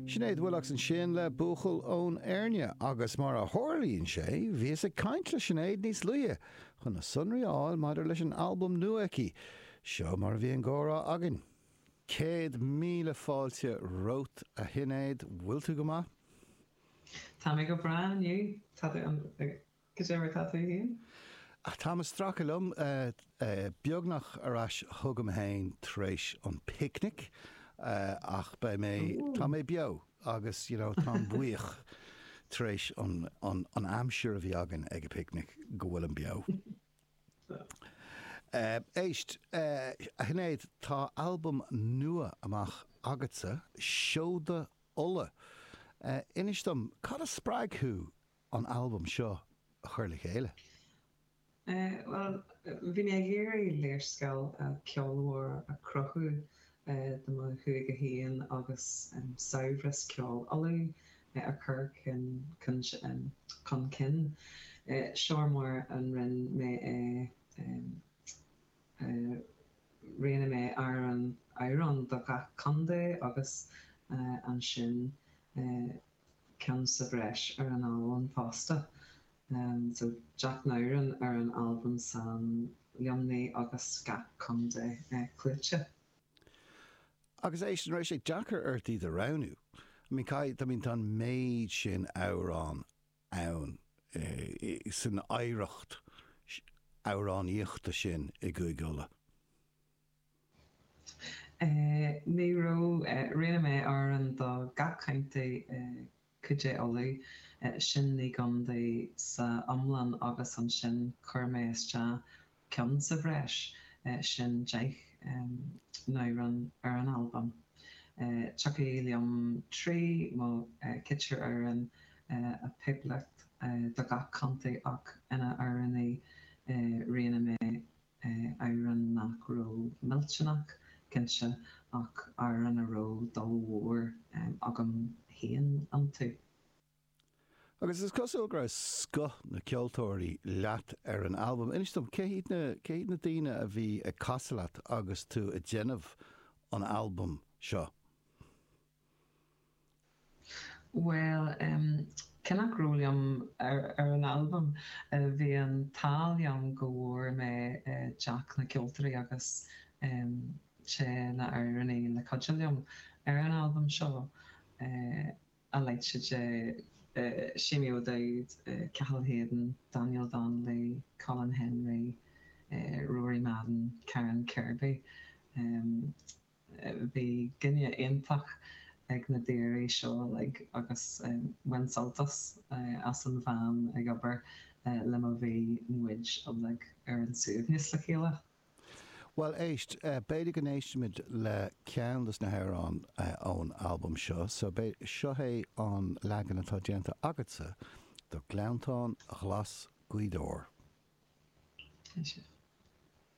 Sinéad Willox ansin le Buachaill ón Éirne agus mar a tharlaíonn sé bhíos ag caint le Sinéad níos luaithe chun na sonraí a fháil maidir leis an albam nua aici. Seo mar a bhí an gcomhrá againn. Céad míle fáilte romhat a Shinéad, bhfuil tú go maith? Tá mé go breá inniu, tá tú? Go deimhin, cad faoi shin? Táim ag stracadh liom beagnach ar ais chugam féin tar éis an picnic ach beidh mé, tá mé beo agus you know táim buíoch tar éis an aimsir a bhí againn ag an bpicnic go bhfuilim beo. Éist, a Shinéad, tá albam nua amach agatsa, Seoda Uladh. Inis dom, cad a spreag thú an albam seo a chur le chéile? Bhuel, bhí mé ag iarraidh léarscáil ceolmhar a chruthú de mo Chúige féin agus saibhreas ceoil Uladh a chur chun cinn. Seo mar a rinne mé é, roghnaigh mé amhrán amhrán do gach contae agus ansin, ceann sa bhreis ar an albam fosta, so deich n-amhrán ar an albam san iomlán agus gach contae clúdaithe. Agus éist, an raibh sé deacair ort iad a roghnú. I mean caithfidh, I mean tá an méid sin amhrán ann san oidhreacht amhránaíochta sin i gCúige Uladh. Ní raibh, roghnaigh mé amhrán do gach contae i gCúige Uladh, sin naoi gcondae sa iomlán agus ansin chuir mé isteach ceann sa bhreis sin deich n-amhrán ar an albam. Thiocfadh liom trí nó ceithre amhrán a phiocadh do gach contae ach na hamhráin a roghnaigh mé amhráin nach raibh millteanach, cinnte, ach amhráin a raibh dúil mhór agam féin iontu. Agus is cosúil go raibh scoth na gceoltóirí leat ar an albam. Inis dom, cé hiad na, cé hiad na daoine a bhí ag casadh leat agus tú ag déanamh an albaim seo? Bhuel, cé nach raibh liom ar an albam, bhí an t-ádh liom go bhfuair mé deichniúr ceoltóirí agus sé na amhránaí le cuidiú liom ar an albam seo, a leithéid de, Seamie O'Dowd, Cathal Hayden, Daniel Donnelly, Colin Henry, Rory Madden, Karen Kirby. Bhí cinéal iontach ag na daoiní seo uilig agus bhain mé sult as a bheith ag obair leo mar Bhí muid uilig ar ár suaimhneas le chéile. Bhuel, éist, b'fhéidir go n-éistfimid le ceann dos na hamhráin ón albam seo so seo é an leagan atá déanta agatsa do Gleanntáin Ghlas Ghaoth Dobhair. Éist.